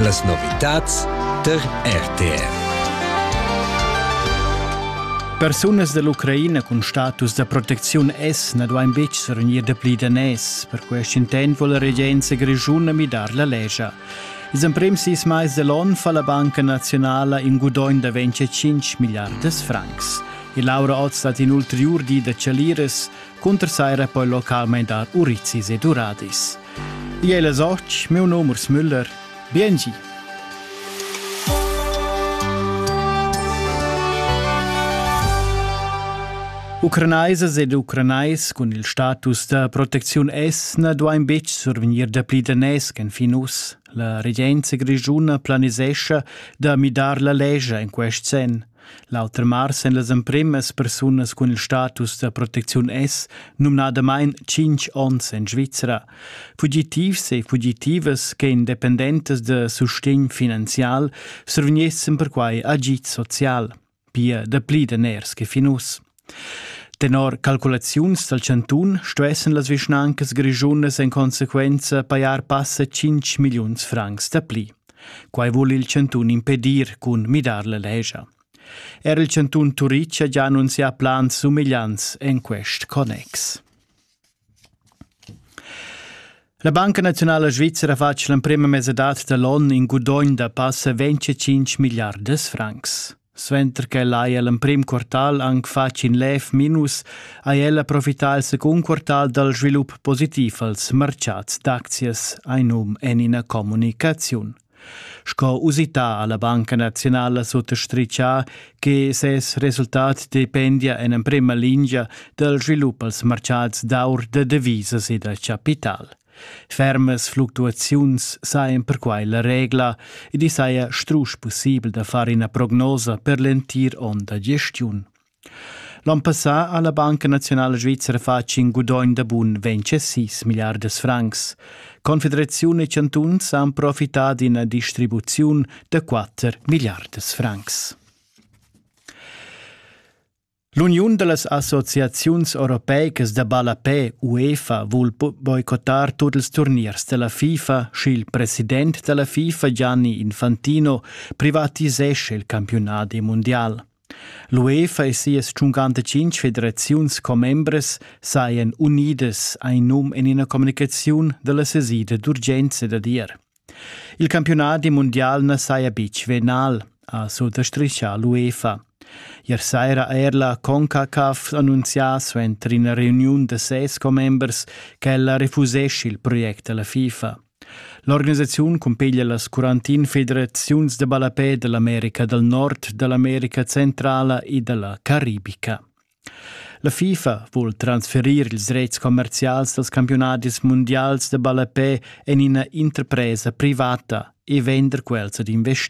Las novitads tar RTR. Persunas dall'Ucraina cun status da protecziun S na duain betg survegnir dapli daners. Per quest intent vuol la regenza grischuna midar la lescha. Ils emprims sis mais dall'onn fa la Banca Nazionala in gudogn da 25 miliardas francs. E Laura Oz dat in ulteriur di da chaliras Cunter saira poi localmain dar urizis ed uradis. Di è soc, meu num Urs Müller. Biengi! Ucranaisas ed ucranais cun il status da protecziun S na duain betg survegnir dapli daners ch'en fin uss. La regenza grischuna planisescha da midar la lescha en quest senn. L'auter mars èn las empremas persunas cun il status da protecziun S numnadamain tschintg onns en Svizra. Fugitivs e fugitivas che independentas da sustegn finanzial survegnessan perquai agid social, pia dapli daners che fin uss. Tenor calculaziuns dal chantun stuessan las vischnancas grischunas en consequenza pajar passa 5 milliuns francs dapli. Quai vul il chantun impedir cun midar la legia. Er il chantun Turitg ha già annunzià plans sumegliants en quest connex. La Banca naziunala svizra ha fatg l'emprema mesadad da l'onn in gudogn da passa 25 milliardas francs. Suenter ch'el haja l'emprim quartal anc fatg in lev minus, ha el profità il secund quartal dal svilup positiv als martgads d'aczias, ein num en ina communicaziun. Sco usità ha la Banca naziunala suttastritgà che ses resultat dependia en emprima lingia dal svilup als martgads d'aur da devisas e da chapital. Fermas fluctuaziuns sajan perquai la regla ed i saja strusch pussibel da far ina prognosa per l'entir onn da gestiun. L'on passà ha la Banca naziunala svizra fatg in gudogn da bun 26 milliardas francs. Confederaziun e chantuns han profità d'ina distribuziun da 4 milliardas francs. L'uniun da las associaziuns europeicas da ballapè UEFA vul boicottar tut ils turniers da la FIFA, sch'il president da la FIFA Gianni Infantino privatisescha il campiunadi mundial. L'UEFA e sias tschuncantatschintg federaziuns commembras sajan unidas ein num en ina communicaziun dalla sesida d'urgenza dad ier. Il campiunadi mundial na saja betg venal, ha sutastrichà l'UEFA. Ier saira ha er la CONCACAF annunzià suenter ina reuniun da ses commembers ch'ella refusescha il project alla FIFA. L'organisaziun cumpeglia las Quarantin-federaziuns da ballapè da l'America dal Nord, da l'America Centrala e da la Caribica. La FIFA vul transferir ils rets commerzials dals campiunadis mundials da ballapè en ina interpresa privata e vender quels ad investir.